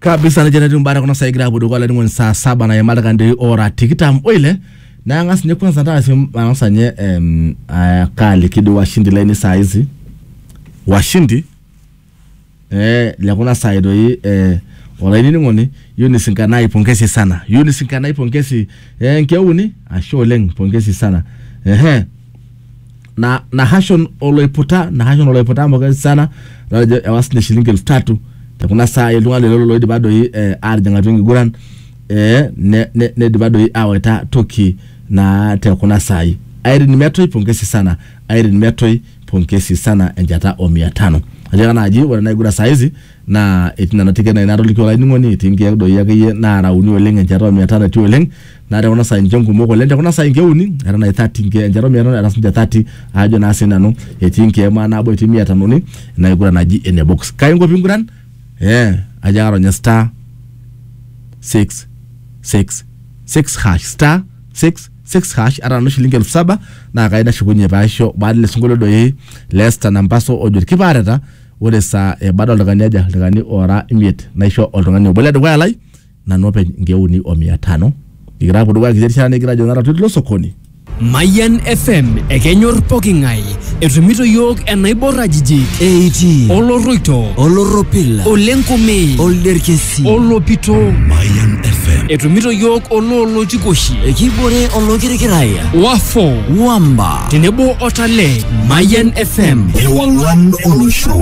kabisa nejia netiu imbaa tekuna saai egira apuo dukuya olainining'oni saa saba nayima ildaikani ora tikitam oile naa ang'as ninye kwanza taasi ang'as anye em, ah, kaaliki dii washindi lainei saa hizi washindi eh, lekuna saai doi eh, olainining'oni Eunice Nkanai pongezi sana Eunice Nkanai pongezi eh, nkeuni ashe oleng pongezi sana ehe na Nahashon oloiputa Nahashon oloiputa amu ketii sana natejo ewa sinye shilingi elfu tatu te kuna saai iltung'anak lelo loidipa doi eh, aatijing atua enkiguran eh, ne- ne- neidipa doi awaita toki naa te kuna saai Irene Metoi pongesi sana Irene Metoi pongesi sana enchata o mia tano ajo naaji ore ena kiguran saa hizi naa etii nena tiket naa natoliki olainining'oni etii nkeek doi akeyie naarauni oleng enchata omia tano etii oleng naa te kuna saai ninche nkumok oleng te kuna saai inkeuni era nai thirty nkeek enchata omia tano era sinche thirty aajo naa sinanu etii nkeek maa nabo etii mia tanoni ina kiguran naji ene box kai inko pinguran eh ajo ake aronye star six six six hash star six six hash ata nanu shilingi elfu saba naa kai nashukunye paisho baada ele sinkolio doi le Esther Nampaso ojo irkipaareta ore esaa ebada oltung'ani aja ildaikani oora imiet naisho oltung'ani obo le dukuya lai nanu openy inkeek uni o mia tano nikigira aapuo dukuya kiti rishata nikigira ajo nara tilo sokoni Mayan FM ekenyor poking'ae etumito yiok enaibor ajijik eitii oloroito olorropil olenkomei olderkesi olopito Mayan FM etumito yiok oloolotikoshi ekibore olokirikiraya wafo wamba tenebo o Talent. Mayan FM. Ewang'an olosho.